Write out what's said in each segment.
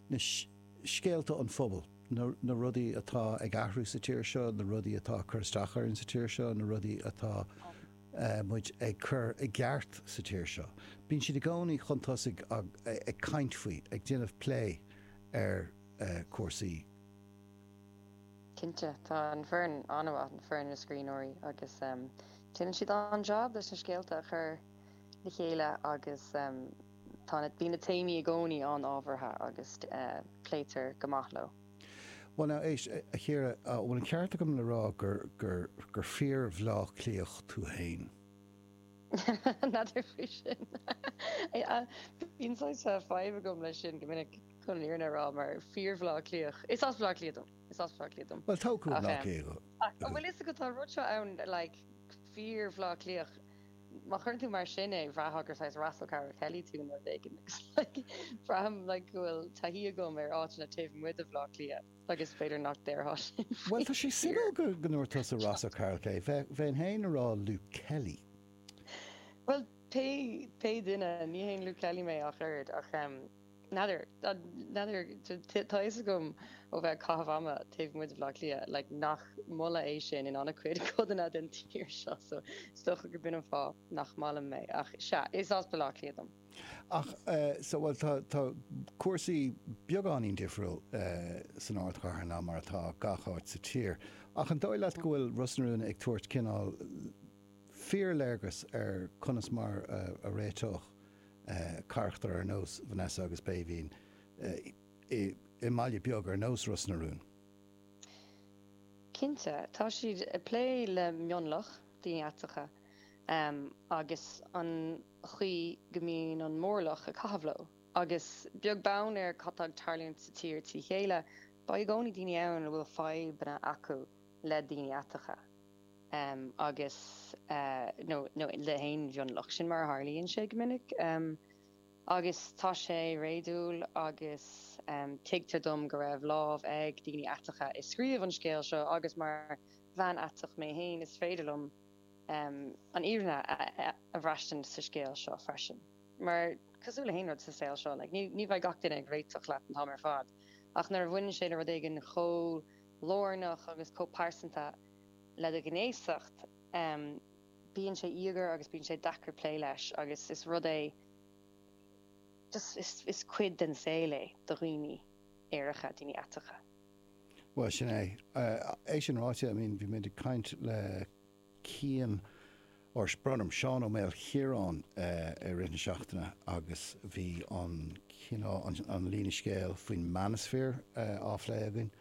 na scéalta an phobail, na rudaí atá ag athrú sa tír seo, na rudaí atá ag cur isteach orainn sa tír seo, na rudaí atá muid ag cur i gceart sa tír seo. Bíonn siad i gcónaí chun tosaigh ag caint faoi, ag déanamh plé ar chúrsaí. Cinnte, tá an foireann an-mhaith, an foireann na scríbhneoirí, agus déanann siad an-jab leis na scéalta a chur le chéile agus. Bíonn na téamaí i gcónaí an-ábhartha agus pléitear go maith leo. Bhuel now, éist, a Chiara, an bhfuil an ceart agam le rá gur fíor Bhleá Cliathach tú fhéin? N'fheadar faoi sin. Bíonn saghas fadhb agam leis sin go minic, chun an fhírinne a rá, mar fíor Bhleá Cliathach. Is as Bleá Cliath dom, is as Bleá Cliath dom. Bhuel, tógtha i mBleá Cliath thú. Ach an bhfuil fhios agat, tá rud seo ann, like, fíor Bhleá Cliathach. Má chuireann tú mar sin é, bhraithfeá gur saghas Ross O'Carroll-Kelly tú nó rud éigin agus like braithim like go bhfuil taithí agam ar áiteanna taobh amuigh de Bhleá Cliath agus b'fhéidir nach déarfá sin Bhuel tá sé fíorshuimiúil go go ndúirt tusa Ross O'Carroll-Kelly bheinn fhéin a rá Luke Kelly. Bhuel pé pé duine, ní haon Luke Kelly mé ach oiread ach em. N'fheadar, n'fheadar, tá fhios agam ó bheith ag caitheamh ama taobh amuigh de Bhleá Cliath, like, nach moladh é sin in an-chuid codanna den tír seo, so is dócha gurb in an fáth nach maith liom é. Ach, sea, is as Baile Átha Cliath dom. Ach, eh, so, bhuel, tá, tá cúrsaí beagáinín difriúil, eh, san ardchathair ná mar atá gach áit sa tír. Ach an dóigh leat go bhfuil Ros na Rún ag tabhairt cineál fíorléargas ar conas mar a, a réiteodh carachtair ar nós Vanessa agus Béibhinn i mbaile beag ar nós Ros na Rún. Cinnte, tá siad ag plé le mionlach, daoine aiteacha, agus an chaoi go mbíonn an mórlach ag caitheamh leo. Agus beag beann ar cad tá ag tarlúint sa tír trí chéile, beidh i gcónaí daoine ann a bhfuil fadhbanna acu le daoine aiteacha. agus, nó le haon mhionlach. Sin mar a tharlaíonn sé go minic. Agus tá sé réadúil agus tuigtear dom go raibh lámh ag daoine aiteacha i scríobh an scéil seo agus mar bhean aiteach mé féin is féidir liom an fhírinne a bhraistint sa scéal seo freisin. Mar, cosúil le haon rud sa saol seo, ní bheidh gach duine ag réiteach leat an t-am ar fad ach nuair a bhaineann sé le rud éigin chomh lárnach agus chomh pearsanta, le do ghnéasacht, bíonn sé íogair agus bíonn sé deacair plé leis agus is rud é just, is, is cuid den saol é do dhaoine aeracha, daoine aiteacha. Bhuel, sin é. É sin ráite, I mean, bhí muid ag caint le Cian ár sprionam Seán Ó Maoilchiaráin i rith na seachtaine agus bhí an cineál an an líne scéal faoin Manosphere á phlé againn.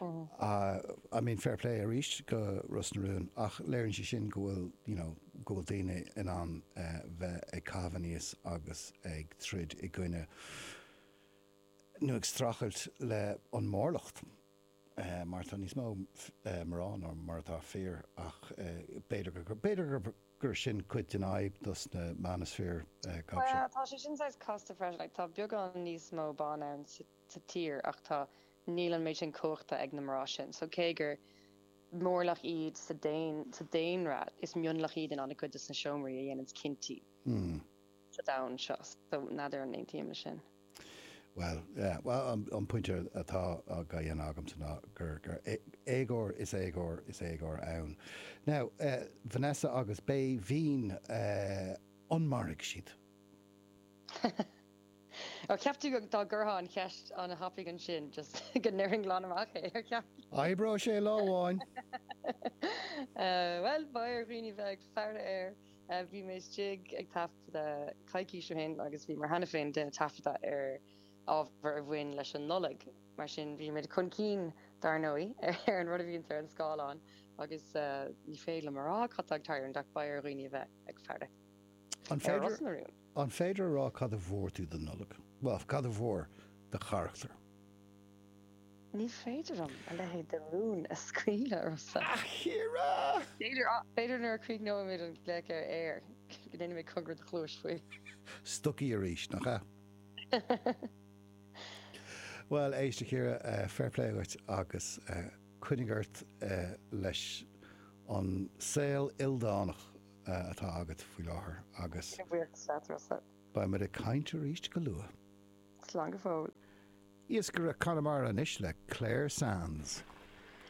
I mean fair play arís go Ros na Rún ach léiríonn sé sin go bhfuil you know go bhfuil daoine in ann bheith ag caitheamh aníos agus ag troid i gcoinne nó ag strachailt le an mórlacht. mar tá níos mó mná ná mar atá fir ach b'fhéidir gur sin cuid den fhadhb dos na Manosphere guys seo. Tá sé sin saghas casta freisin, tá beagán níos mó ban ann sa tír ach tá níl an méid sin cumhachta ag na mná sin so cé gur mórlach iad sa daonra is mionlach iad in an-chuid dos na seomraí a dhéananns cinntí sa domhan seo so n'fheadar an aontaím le sin. Bhuel, an pointe atá á dhéanamh agamsa ná gur éagóir is éagóir is éagóir ann. Now, Vanessa agus Béibhinn, an mairfidh siad? Ar cheap tú dá gcuirtheá an cheist an-tapaidh ansin just go ndéarfainn glan amach é, ar cheap? Oibreoidh sé lá amháin! Bhuel, beidh ar dhaoine bheith ag faire air. Bhí mé istigh ag taifeadadh coicís ó shin agus bhíomar cheana féin déanamh taifeadta ar ábhar a bhain leis an Nollaig, mar sin bhí muid chun cinn, dar ndóigh, ar an rud a bhíonns ar an scáileán agus ní féidir liom a rá cad tá ag tarlúint ach beidh ar dhaoine a bheith ag faire ar Ros na Rún. An féidir a rá cad a bhfuair tú don Nollaig? Bhuel, cad a bhfuair do charachtar? Ní féidir liom a leithéid de rún a scaoileadh ormsa! A Chiara! B'fhéidir, ach b'fhéidir nuair a chríochnóimid an glaoch ar aer, go ndéanfaimid cogar i do chluais faoi. Stocaí arís, nach ea? Bhuel, éist, a Chiara, fair play dhuit agus coinnigh ort leis an saol ildánach. atá agat faoi láthair agus. Cén bhríoch is fearr tusa? Beidh muid ag caint arís go luath. Slán go fóill. Iascaire Chonamara anois le Clare Sands.